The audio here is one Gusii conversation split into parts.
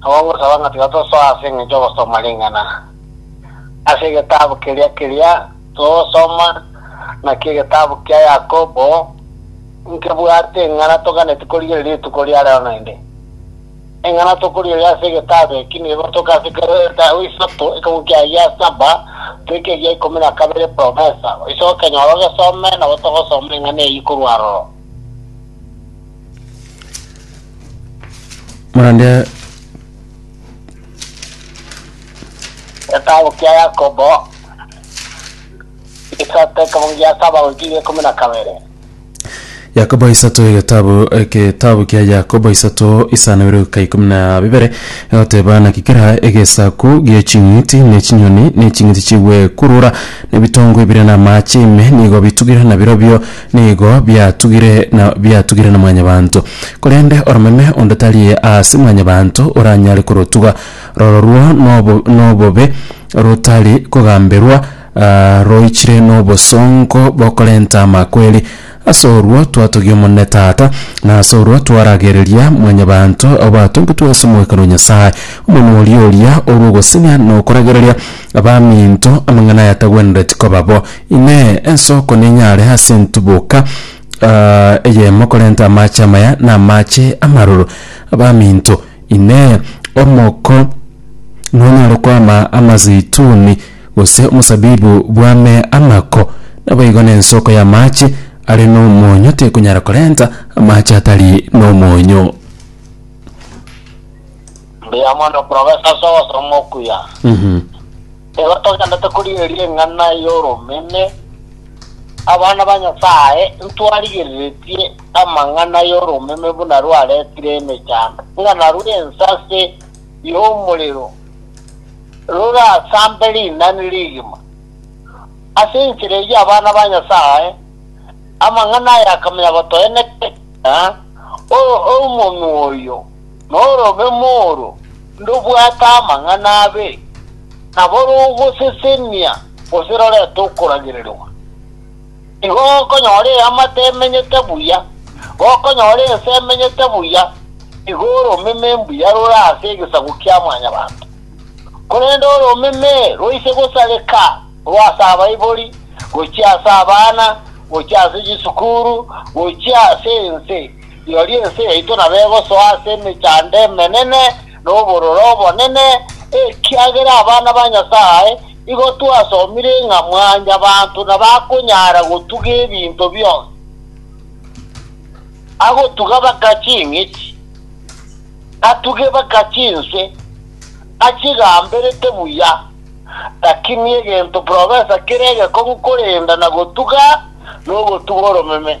Nabo ngosaba ng'a tiga tosoa ase engencho y'ogosoma ring'ana ase egetabu keria keria togosoma, naki egetabu kia Yakobo nkebwate eng'ana toganetie korigereria rituko ria rero naende. Eng'ana tokorigereria ase egetabu eki negotoka ase kera etabu isato, ekegwi kia gia saba toike egia ikomi na kabere promesa. Oise okenyora ogesome, nabo togosoma eng'ana eyio korwa aroro. Naende Getabu kia Yakobo, egesato ekemo gia saba goika egia ikomi na kabere. Yakobo isato egetabu egetabu kia Yakobo isato isano ibere goika ikomi na bibere egoteba naki kera egesaku gie ching'iti ne chinyoni ne ching'iti chigwekurura ne ebitongo ebire na amache ime nigo bitugire na birobio Nigo biatugire na biatugire na Mwanyabaanto. Korende oromeme onde tari aase Mwanyabaanto oranyare korotuga. Rororwo nobo nobobe rotari kogamberwa, roichire nobosongo bokorenta amakweri. Ase orwo twatogia Omonene Tata, na ase orwo twaragereria Mwanyabaanto obatongitwe ase omogwekano o Nyasae, Omonwa oria oria orw'ogosenia na okoragereria, Abaminto, amang'ana aya tagwenereti koba bo. Inee! Ensoko nenyare ase entuboka eyemo korenta amache amaya na amache amaroro? Abaminto, inee! Omoko nonyare kwama amazeituni, gose omosabibu bwame amako? Naboigo nensoko y'amache are nomonyo tekonyara korenta amache atari nomonyo. Mbuya mono Professor ase obosong'u okuya. Igo togenderete korigereria eng'ana y'oromeme. Abana ba Nyasae ntwarigereretie amang'ana y'oromeme buna rwaretire emechando, ng'a narwo ensase y'omorero rorasambe rinani rigima. Ase enchera eyio abana ba Nyasae, amang'ana aya akamanya gotoeneka, ng'a omonwa oyo, Norobemo oro, ndobwate amang'ana abe, nabo rogosesenia gose rorete okoragererwa. Igo gokonyora eamate emenyete buya, gokonyora ense emenyete buya, igo oromeme mbuya rore ase egesaku kia Mwanyabaanto. Korende oromeme roise gosareka rwo ase abaibori, gochia ase abana, gochia ase chisukuru, gochia ase ense, Rirorio ense yaito nabo egosoa ase emechando emenene na obororo obonene, ekiagera abana ba Nyasae igo twasomire ng'a mwanyabanto nabakonyara gotuga ebinto bionsi, agotuga baka ching'iti, atuge baka chinse, achigamberete buya. Lakini egento profesa kere egekong'u korenda na gotuga nogotuga oromeme.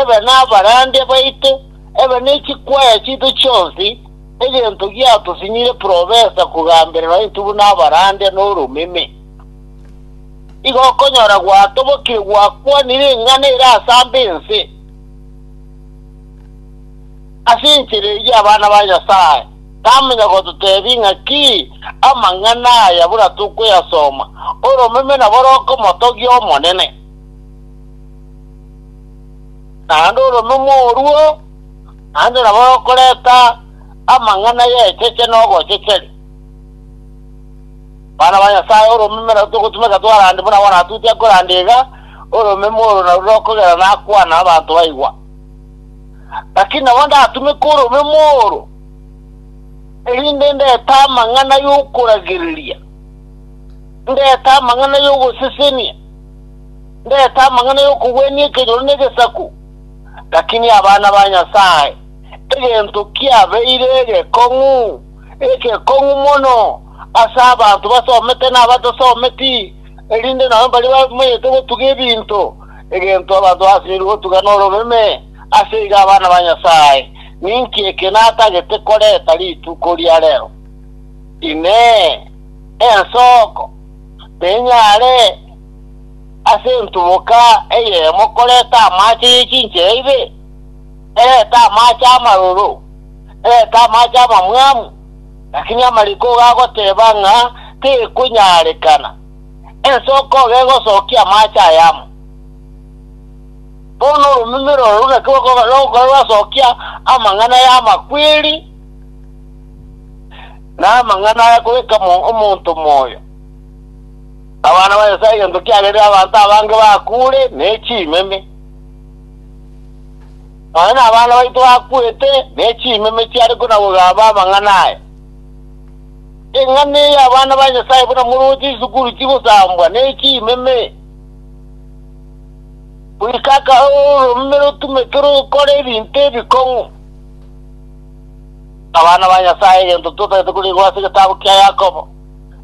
ebe nabarande baito, ebe ne chikwaya chiaito chionsi, egento giatosinyire profesa kogambererwa intwe buna abarande n'oromeme. Igo okonyora gwatobokire gwakwanire eng'ana ere asamba ense ase enchera eyio abana ba Nyasaye, namanya gototebia ng'aki amang'ana aya buna tokoyasoma, Oromeme nabo rokomotogia Omonene. Naende oro nomoruo, naende nabo okoreta amang'ana y'echeche na obochecheri. Bana ba Nyasae, oromeme nabo togotumeka twarande buna bono Atuti akoranda iga, oromeme oro narwo rokogera nakwana abanto baigwa. Lakini nabo ndatumeka oromeme oro, erinde ndete amang'ana y'okoragereria, ndete amang'ana y'ogosesenia. Ndete amang'ana y'okogwenia ekenyoro negesaku, lakini abana ba Nyasae egento kiabeire egekong'u, egekong'u mono ase abanto basomete na abatasometi, erinde nabo baria bamenyete gotuga ebinto, egento abanto basinyirie gotuga nororeme, ase igo abana ba Nyasae, ninki eke natagete koreta rituko ria rero? Inee! Ensoko nenyare? ase entuboka eyemo koreta amaache ye chinchera ibe, erete amaache amaroro, erete amaache amamwamu, lakini amariko gagoteba ng'a tekonyarekana, ense okoga egosokia amaache aya amo. Bono oromeme rororo naki roko- rogokora rwasokia amang'ana y'amakweri, na amang'ana akoreka omo- omonto moyo. Abana ba Nyasae egento kiagerire abanto abange bakuure ne chimeme. Nonya nabana baito bakwete ne chimeme chiare konabogamba amang'ana aya. Eng'ana eye abana ba Nyasae buna moroche isukuru chigosambwa ne chimeme, goika akaba ororomeme rotumeke rokora ebinto ebikong'u. Abana ba Nyasae egento totagete korigwa ase egetabu kia Yakobo.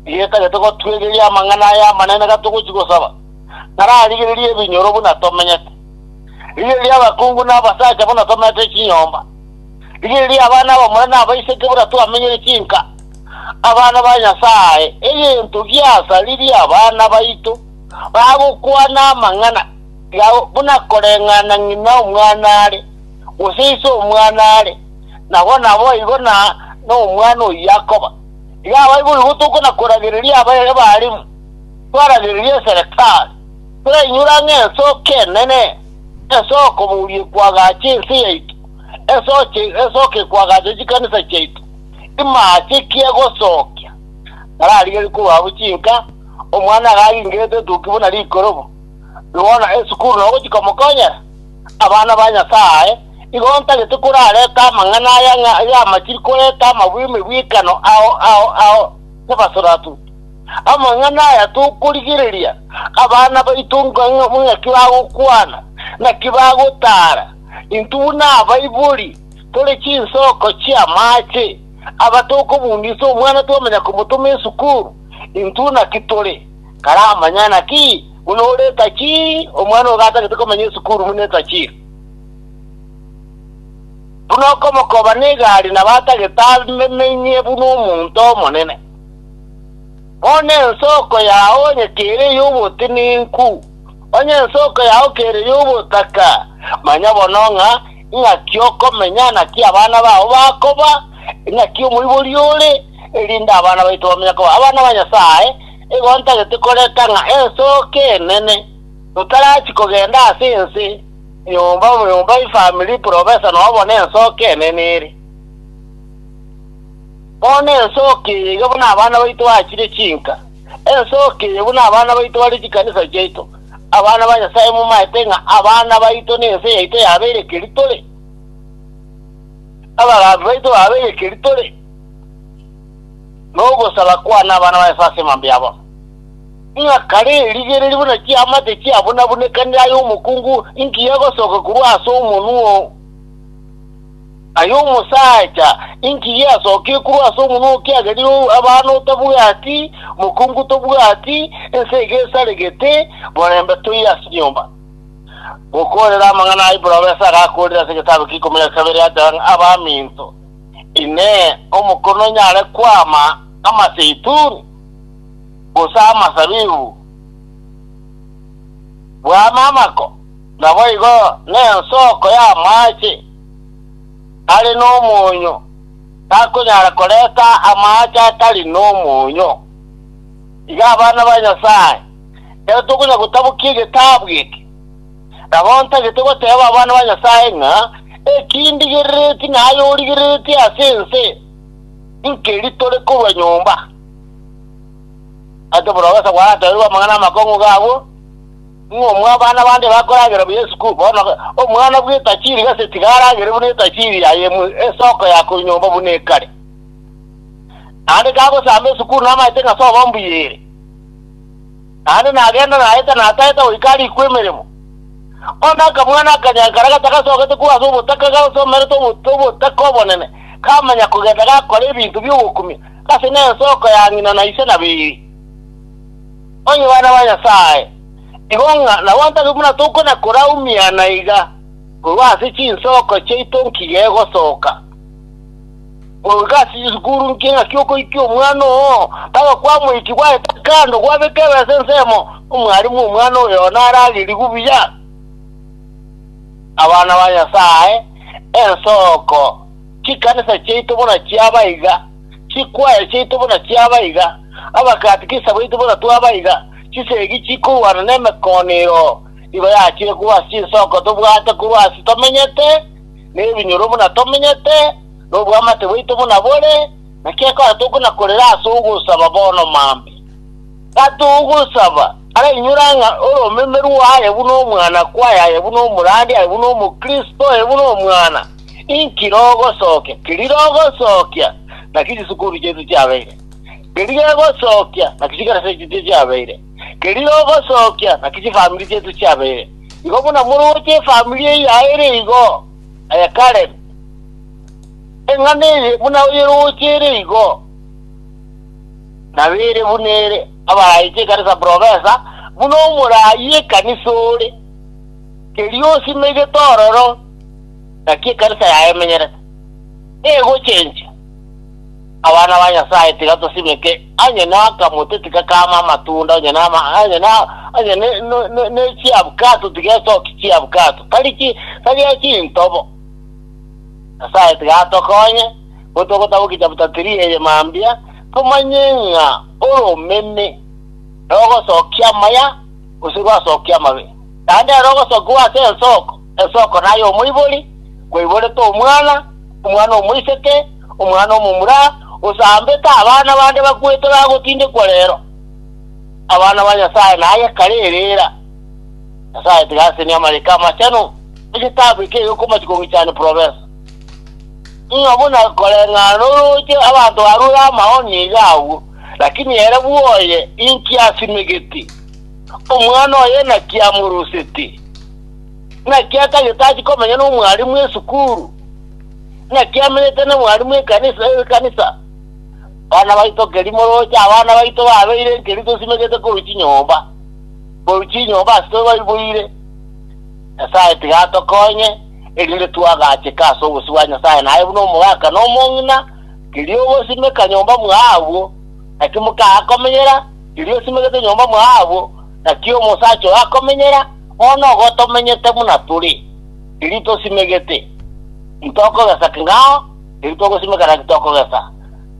Rieta rire togotwegeria amang'ana aya amanene gatogochia gosaba, nararigererie ebinyoro buna tomenyete. Rigereria abakungu na abasacha buna tomeete chinyomba. Rigereria abana abamura na abaiseke buna twamenyire chinka, abana ba Nyasae, egento giasaririe abana baito bagokwana amang'ana yao buna koreng'ana ng'ina omwana are, gose ise omwana are, nabo naboigo na nomwana oyio akoba. Yaba boigo tokona koragereria abae b'abaremu, twaragereria eserekari, torainyora ng'a ensoke enene esooko boria ekwagacha ense yaito, ensoche esooko ekwagacha chikanisa chiaito, imaache ki egosookia? Nararigerie korwa abwo chinka, omwana agaaringerete etoki buna rikorobo, rikona esukuru nogochia komokonyera. Abana ba Nyasae, igo ntagete korareta amang'ana aya ng'a y'amachiri koreta amabwemebwekano ao ao ao nebasoratu. Amang'ana aya tokorigereria abana baito ng'aki bagokwana, naki bagotara intwe buna abaibori tore chinsoko chi'amache, aba tokobundisa omwana twamanya komotoma esukuru, intwe naki tore, karamanya naki Buna ore etachi, omwana ogo gatagete komenya esukuru buna etachi. Buna okomokoba negari nabo atagete amenye buna omonto omonene. Bono ensoko yao onye kere ey'obotenenku, onye ensoko yao kere ey'obotaka, manya bono ng'a ing'aki okomenya, naki abana bao bakoba, ing'aki omoibori ore, erinde abana baito bamenye koba abana ba Nyasae, Nigo ntagete koreka ng'a ensooke enene, totarachia kogenda ase ense, nyomba nyomba, ifamiri, profesa, noo bono ensooke enene ere. Bono ensooke eye iga buna abana baito baachire chinka, ensooke eye buna abana baito bare chikanisa chiaito. Abana ba Nyasae momaete ng'a abana baito nense yaito yabeire keri tore. Abagambi baito babeire keri tore. nogosaba kwane abana ba Nyasae ase emambe yabo, ng'a kare rigereria buna chiamate chiabunabunekanire ay'omokungu engiya egosoka korwa ase omonwa oo, ay'omosaacha engiya easokire korwa ase omonwa oo, ekiagera rirorio abana otabwati, mokungu tobwati, ense iga esaregete, borembe toiyo ase nyomba. Gokoorera amang'ana aya Ibraoesi agakoorire ase egetabu kia ikomi na kabere, agateba ng'a, Abaminto, Inee, omokono onyare kwama amaseituni, gose amasabibu bwame amako? Naboigo nensoko y'amaache are nomonyo takonyara korenta amaache atari nomonyo. Iga abana ba Nyasae, ekero tokonya gotabokia egetabu eke, Nabo ntagete goteeba abana ba Nyasae ng'a eki ndigereretie na aye origereretie ase ense nkeri tore korwa nyomba. Ase oborogesa gwaratebiwe amang'ana amakong'u g'abwo, ng'a omwabana bande bakoragera buya esukuru, bono omwana bw'etachiri gose tiga aragere buna etachiri yaye mu esoko ya korwa nyomba buna ekare. Naende kagosamba esukuru namaete ng'a sobo mbuya ere. naende nagenda naeta nataeta goika arikwe emeremo. Onde akamwana akanyankare gatagasogete korwa ase obotaka gasomerete obotuto obotaka obonene, kamanya kogenda gakora ebinto bi'ogokumia gase nensoko ya ng'ina na ise na beeri. Onye bana ba Nyasae, igo ng'a nabo ntari buna tokona koraumiana iga korwa ase chinsoko chiaito nkigegosoka. Ogoika ase chisukuru inki ng'aki okoikia omwana oo, mpaka kwamoikia gwaeta kando, gwabeka ebesa ensemo, omwalimu omwana oyo naragerigwe buya. Abana ba Nyasae, ensoko chikanisa chiaito buna chiaba iga, chikwaya chiaito buna chiaba iga, abakatikisa baito buna twaba iga, chisegi chikorwana nemekoonero igo yachire korwa ase chinsoko tobwate korwa ase tomenyete, nebinyoro buna tomenyete, na obwamate bwaito buna bore, naki ekero tokonakorera ase ogosaba bono maambia. Gati ogosaba, arainyore ng'a oromeme rwao aye buna omwana kwaye, aye buna omorandi, aye buna Omokristo, aye buna omwana, inki rogosokia, keri rogosokia, naki chisukuru chiaito chiabeire, keri gegosokia, naki chikanisa chiaito chiabeire. Keria ogosookia, naki chifamiri chiaito chiabeire igo buna moroche efamiri eyio ere igo. Aye Karen, eng'ana eye buna oyeroche ere igo, nabeire buna ere, abarayiche ekanisa profesa, buna omorayi ekanisa ore, keria osimegete ororo, naki ekanisa yaye emenyerete, egochencha. Abana ba Nyasaye, tiga tosimeke. onye n'akamote tigakaama amatunda, onye na, onye na, onye ne, ne, ne, ne chiabukato tigesoki chiabukato, tari chi, tari achintobo. Nyasae tigatokonye, gotogotaboki chapter 3 eye mambia, tomanye ng'a oromeme rogosokia amaya, gose rwasokia amabe, naende ere ogosokiwa ase ensoko. Esoko naye omoibori, kwaiborete omwana, omwana omoiseke, omwana omomura, gose ambete abana bande bakwete bagotindekwa rero. Abana ba Nyasaye naye kare erera. Nyasaye tiga asenie amariiko amachenu egetabu eke egekomati kong'ichani probensa. Ng'a buna koreng'ana norooche abanto barure amaoni iga agwo, lakini ere bwoye inki asimegeti? Omwana oye naki amoroseti? Naki akare tachia komenya nomwarimu esukuru, naki amenyete nomwarimu ekanisa, ekanisa. Bana baito keri moroche abana baito babeire nkeri tosimegete korwa chinyomba, korwa chinyomba ase tobaibweire. Nyasaye tiga atokonye, erinde twagacheke ase obosio bwa Nyasaye naye buna omogaka na omong'ina, kerio ogosimeka nyomba mwaye agwo, naki mokaga komenyera, kerio osimegete nyomba mwaye agwo, naki omosacha oyo akomenyera, Bono igo tomenyete buna tore, erio tosimegete, tintokogesa king'ao, erio togosimeka naki tokogesa.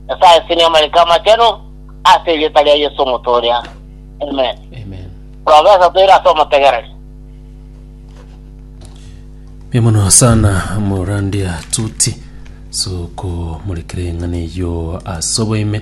Nyasae aseenie amariko amachenu ase erieta ria Yeso omotooria. Amen. Amen. Profesa toire ase omotegereri. Mbuya mono sana morandia tuti sokomorekera eng'ana eyio ase oboime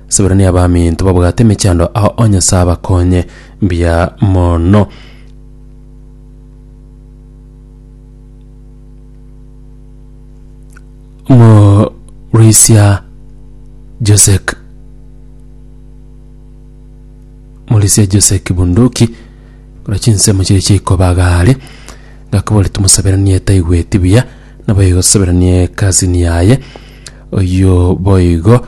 Seburania abaminto babwate emechando ao o Nyasae abakonye mbuya mono. Morisia Josek Morisia Josek Bunduki kora chinsemo chiria chiaikobagare ngakobori tomosaberanie taigweti buya nabo igo tosaberanie ekasini yaye oyio boigo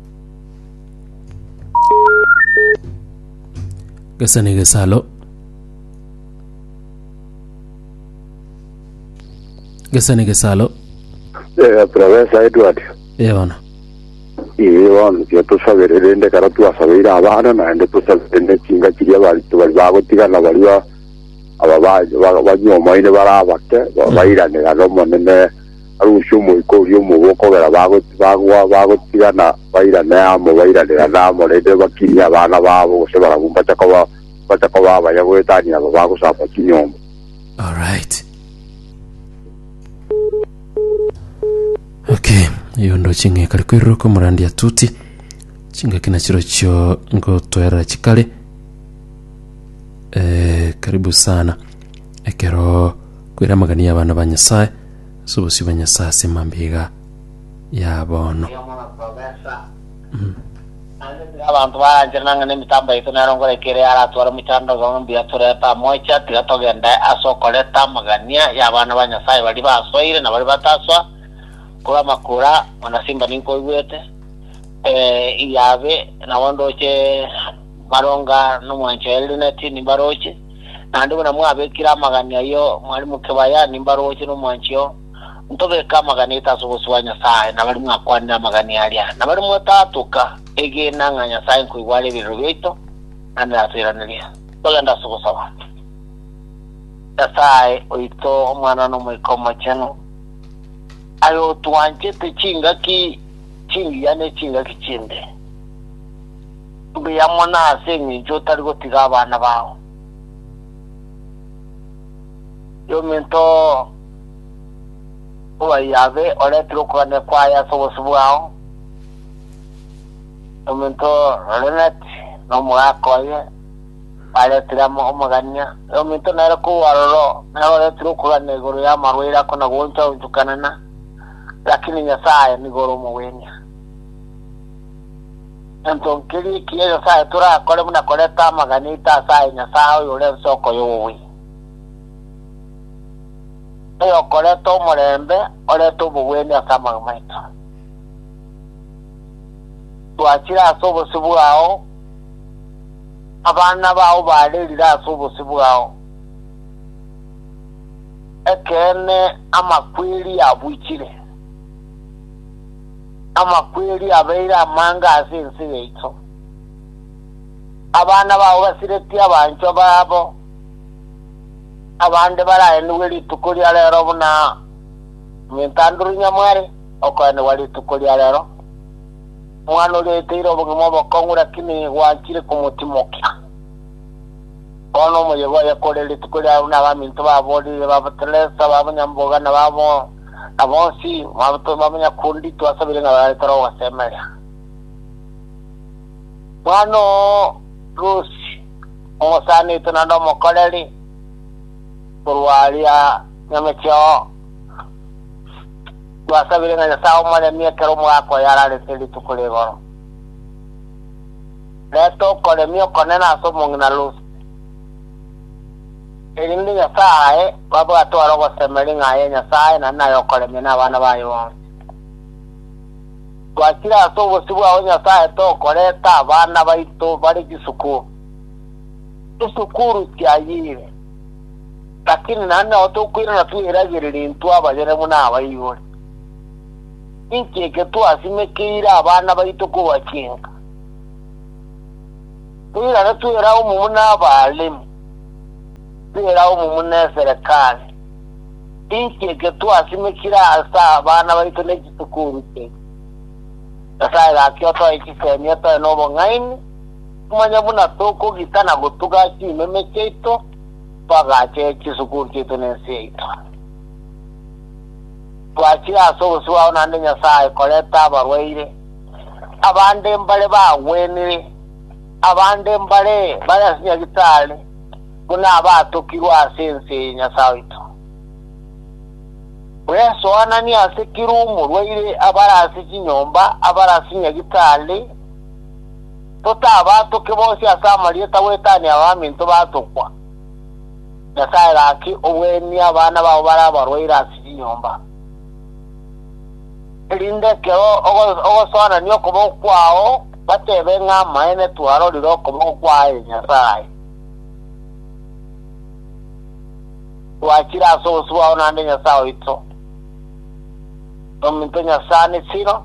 Gesa negesalo. Gesa negesalo. Eh, Professor Edward Eh, bono. ee bono tiga tusabere rende kara twasabeire abana naende tusabere ne chinga chiria bari bari bagotigana bari ba- aba ba- ba- banyomoine bari abake ba- bairanera na omonene Arusie omoika oria omobe okobera bagoti bagwa bagotigana bairane amo bairanirane amo naende bakirie abana babo gose barabwo mbacha koba mbacha koba abaya goetania aba bagosamba chinyomba. Alright. Okay, yondo ching'eka rikwiruruka omorandi atuti chingaki na chirochio ngotoera chikare eh, karibu sana ekero kwera amagania abana ba nyasaye Ase obosio bwa Nyasae ase mambia ya bono. Nabwatire abanto baranchera nang'e nemitambo yaito nero ngoreke ere aratware omochando obe mbuya torete amo echa tiga togende ase okoreta amagania y'abana ba Nyasae baria basoire na baria batasoa korwa amakura mana simba ninkoigwete ee iyabe nabo ndoche maronga nomwanchwa Elineti nimbaroche Naende buna mwabekire amagani ayio Mwalimu Kebaya, nimbaroche nomwanchio, ntobeke amagani aito ase obosio bwa Nyasae, na baria mwakwanire amagani aria, na baria mwataatoka, egena ng'a Nyasae nkoigwa are ebireero biaito, naende natoiranerie. Togende ase ogosaba. Nyasae oito, Omwana, na Omoika Omochenu, aye otwanchete chingaki chingiya ne chingaki chimbe. Mbuya mono ase engencho otari gotiga abana bao yominto obayio abe oretire okogania kwaye ase obosio bwao, yominto Lorenet na omogaka oye baretire amo omogania, yominto nere kobu aroro nere oretire okogania igoro y'amarwaire ako na gooncha-onchukanana, lakini Nyasae nigo ore omogwenia. Gento nkeria ekiya Nyasae torakore buna koreta amagana aito ase aye Nyasae oyore ensoko y'obobui, oyokoreta omorembe, orete obogwenia ase amang'ana maito. Twachire ase obosio bwao, abana bao barerire ase obosio bwao, ekeene amakweri abuchire. Amakweri abeire amange ase ense yaito. Abana bao basiretie abanchwa babo, abande baraenigwe rituko ria reero buna Omw'entanduri nyamware okoenigwa rituko ria reero. Omwana oria oeteire obogima obokong'u lakini gwanchire komotimokia. Bono omoyega oye kore rituko riabo buna abaminto babo riire, babotelesa, babonyamboga, na babo, Na bonsi bamonyakundi twasabire ng'a babe toro gosemeria. Mwana o Rusi, omosani oito naende omokoreri korwa aria nyamecheo, twasabire ng'a Nyasae omoremie ekero omogaka oye ararete rituko rigoro. Reta okoremia okonene ase omong'ina Rusi. erinde Nyasae babwate ore ogosemeri ng'a aye Nyasae na naye okoremia nabana baye bonsi. Twachire ase obosio bwao Nyasae tokoreta abana baito bare chisuku, chisukuru chiayire, lakini naende nao tokoirana tweragereri intwe abayere buna abaibori. Nincheke twasimekeire abana baito korwa chinka. Toirane twera omomu n'Abaremi, twera omomu n'eserekari, inki eke twasimekire ase abana baito ne chisukuru chiaito? Nyasae gaki otoe chisemi, otoe n'obong'aini, omanye buna tokogita na gotuga chimeme chiaito, twagache chisukuru chiaito na ense yaito. Twachire ase obosio bwao naende Nyasae koreta abarwaire, Abande mbare bagwenire, abande mbare bare ase Nyagetari, buna abatokirwe ase ense ye Nyasae oito. Bwesoananie ase kera omorwaire abare ase chinyomba abare ase Nyagetari, totabatoke bonsi ase amarieta goetania abaminto batokwa. Nyasae gaki obweenie abana bao bare abarwaire ase chinyomba. Erinde ekero ogosoanania okoboko kwao, batebe ng'a amaene twarorire okoboko kwaye Nyasae. Twachire ase obosio bwao naende Nyasae oito, nominto Nyasani Silo,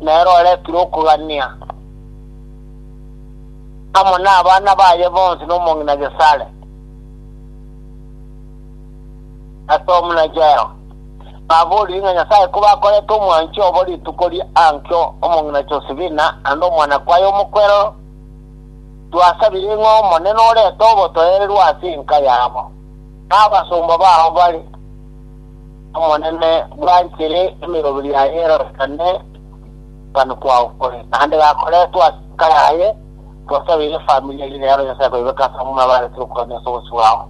nere oretire okogania amo nabana baye bonsi nomong'ina Gesare, Ase omonacheo, baboorire ng'a Nyasae koba akorete omwanchi obo rituko ria Antio, omong'ina Josefina, naende omwana kwaye omokwerero. Twasabire ng'a Omonene orete obotoereru ase enka yabo, na abasomba bao bare. Omonene bwanchire emeroberio yaye erorekane okogania kwao kore, naende gakoretwe ase enka yaye. Twasabire efamiri eye, rero Nyasae koibeke ase abamura baarete okogania ase obosio bwao.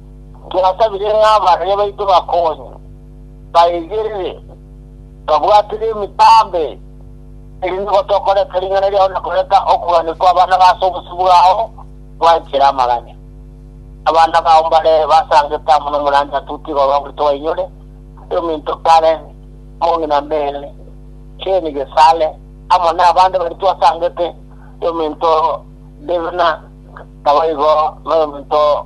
Twasabire ng'a abarwani baito bakonye, baigerere, babwatire emitambe, erinde gotokoreka ring'ana riao na koreka okogania kw'abana b'ase obosio bwao gwanchera amaganya. Abana bao mbare basangete amo nomoranyato otiga orwabweto bainyore, ase ominto Karen, omong'ina Mary, Jane Gesale, amo nabande baria twasangete, ominto Devna, naboigo noyominto